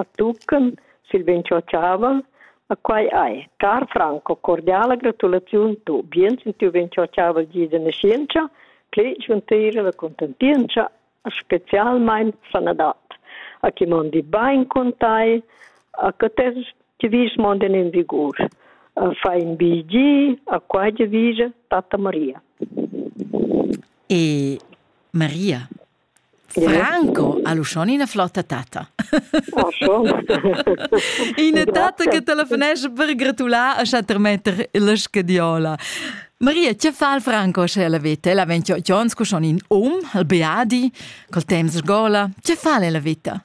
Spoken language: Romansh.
a tuccan sil vin chochavan a quai hai car Franco cordiala gratulaziun tu bien sin tiu vin chochaval gi de nascienza pli schuntira la contentienza specialmein sanadad a chi mondi bain con tai a che tes ti vis monden in vigur fa in bigi a quai de vige tata Maria e Maria Franco ha l'uschon ina flotta tatta. Oh, schon. ina tatta che telefonesce per gratular a Chattermetter la scadiola. Maria, che fa il Franco se la vita? Ella venta Jones con in um, il Beadi, col temps sgola. Che fa la vita?